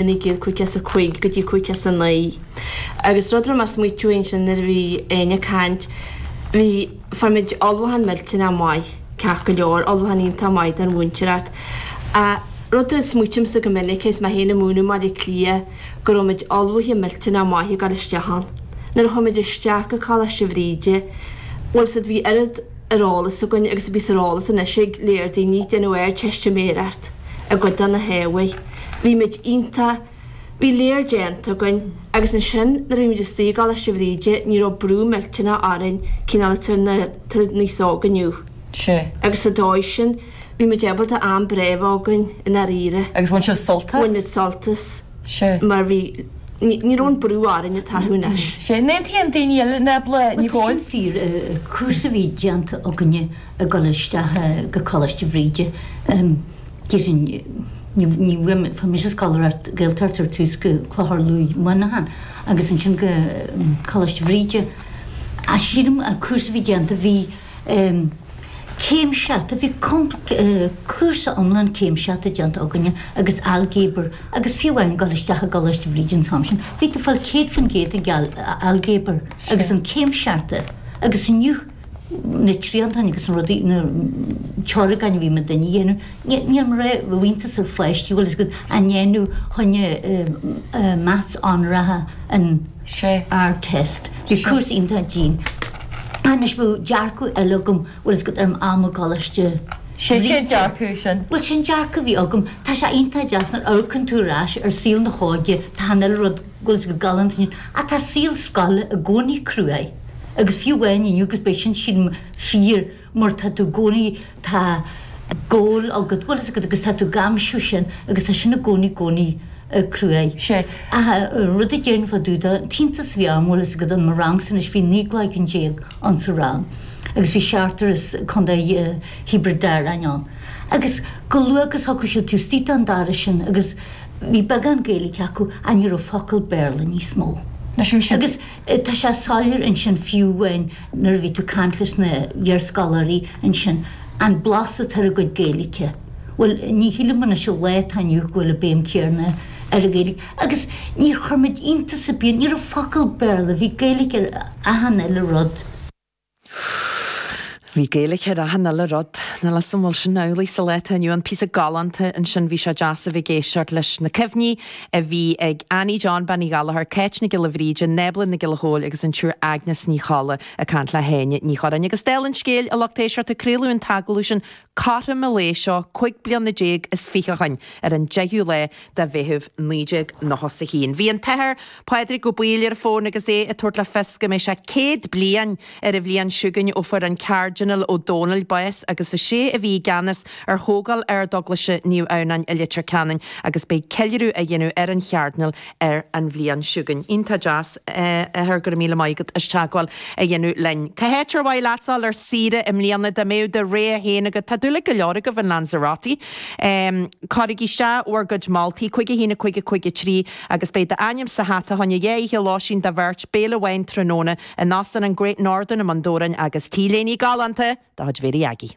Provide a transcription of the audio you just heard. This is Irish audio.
naoi gcéad caoga is a cúig go dtí caoga is a naoi agus rud a raibh mé ag smaoitiú ansin nuair a bhí Annie ag caint, bhí, fuair muid ullmhúchán millteanáth maith, ceart go leor, ullmhúchán iontach maith don mhúinteoireacht. Ach rud a smaoitímse go minic agus mé féin ag múineadh i mBaile Cliath go raibh muid ullmhaithe millteanáth maith ag dul isteach ann. Nuair a chuaigh muid isteach go Coláiste Bhríde, bhuel so bhí oiread ar eolas againn agus a bhíos ar eolas anois ag léar daoine ag déanamh Ardteistiméireacht i gcuid de na hábhair, Bhí muid iontach. Bhí léar déanta againn agus ansin nuair a bhí muid istigh i gColáiste Bhríde ní raibh brú millteanach orainn cineál atá ar an aos óg inniu. Sea, agus sa dóigh sin bhí muid ábalta am breá a bheith againn i ndáiríre. Agus bhain sibh sult as? Bhain muid sult as. Sea. Mar bhí, ní raibh an brú orainn atá orthu anois. Sea, an aontaíonn daoine eile Nábla? Bhuel, tá sin fíor, cúrsa a bhí déanta againne ag dul isteach go Coláiste Bhríde. Fuair mise scoláireacht Gaeltachta ar tús, go Clochar Lughaidh Muineachán agus ansin go Coláiste Bhríde. Ach sílim an cúrsa a bhí déanta, bhí céimseata, bhí cúrsa iomlán céimseata déanta againne agus ailgéabar agus fiú amháin ag dul isteach i gColáiste Bhríde an t-am sin, bhí tú ag fáil 100% ag ailgéabar agus an céimseata agus inniu, na triantáin agus na rudaí, na teoragáin a bhí muid a dhéanamh, níl mé raibh iontas ar pháistí bhfuil fhios agat á ndéanamh chun maths onóracha ins an Ardteist, bhí cúrsa iontach dian. Anois bhí dearcadh eile agam bhfuil fhios agat ar am i gColáiste sea cén dearcadh sin? Bhuel sin dearcadh a bhí agam, tá sé iontach deas nuair a amharcann tú ar ais ar saol na hóige, tá achan uile rud bhfuil fhios agat galánta ach tá saol scoile i gcónaí cruaidh. agus fiú amháin inniu agus beidh sin sin fíor mar tá tú i gcónaí, tá goal agat, bhfuil fhios agat agus tá tú ag aimsiú sin agus tá sin i gcónaí i gcónaí cruaidh. Sea. Ach an rud a déarfainn fá dtaobh de, an t-iontas a bhí orm, bhfuil fhios agat in mo rangsa anois bhí 19 gcloigeann insa rang agus bhí seachtar as Contae Thiobraid Árann ann agus chomh luath agus a thiocfadh siad taobh istigh den doras sin agus bhí beagán Gaeilge acu ach ní raibh focal Béarla níos mó. Leis an sin. Tá sé soiléir ansin fiú amháin nuair a bhí tú ag caint leis na hiarscoláirí ansin, an blas atá ar a gcuid Gaeilge. Bhuel, ní shílim anois an lá atá inniu go bhfuil an béim chéarna ar an Ghaeilge. Agus níor chuir muid iontas ar bith ann, ní raibh focal Béarla, bhí Gaeilge ar achan uile rud. Bhí Gaeilge ar achan uile rud. Níl 'fhios a'm an bhfuil sin amhlaidh sa lá atá inniu ann. Píosa galánta ansin, bhí sé deas a bheith ag éisteacht leis na cuimhní a bhí ag Annie John Bean Uí Ghallchóir, Cáit Nic Giolla Bhríde, Nábla Nic Giolla Chóill agus an tSiúr Aigneas Ní Cholla ag caint le hÁine Ní Churráin. Agus dála an scéil, a lucht éisteachta, craoladh an t-agallamh sin Cothrom an lae seo cúig bliana déag is fiche ó shin, ar an 10ú lá de Mheitheamh 1991, bhí an tAthair Pádraig Ó Baoill ar an fón agus é ag tabhairt le fios go mbeidh sé céad bliain ar an bhliain seo chugainn ó fuair an Cairdinéal Ó Dónaill bás agus is é a bhí i gceannas ar thógáil Ardeaglaise Naomh Adhamhnáin i Leitir Ceanainn agus beidh ceiliúradh á dhéanamh ar an Chairdinéal ar an bhliain seo chugainn. Iontach deas, a Athair, go raibh míle maith agat as teagmháil a dhéanamh linn. Cá háit ar mhaith leatsa a dhul ar saoire i mbliana? Dá mbeadh do rogha féin agat, tá dúil ag go leor agaibh in Lanzarote, cuirigí isteach bhur gcuid moltaí, 51 50 53, agus beidh d'ainm sa hata fá choinne dhá oíche lóistín do bheirt, béile amháin tráthnóna in Óstán an Great Northern i mBun Dobhráin agus T-léine galánta de chuid Mhéirí Aggie.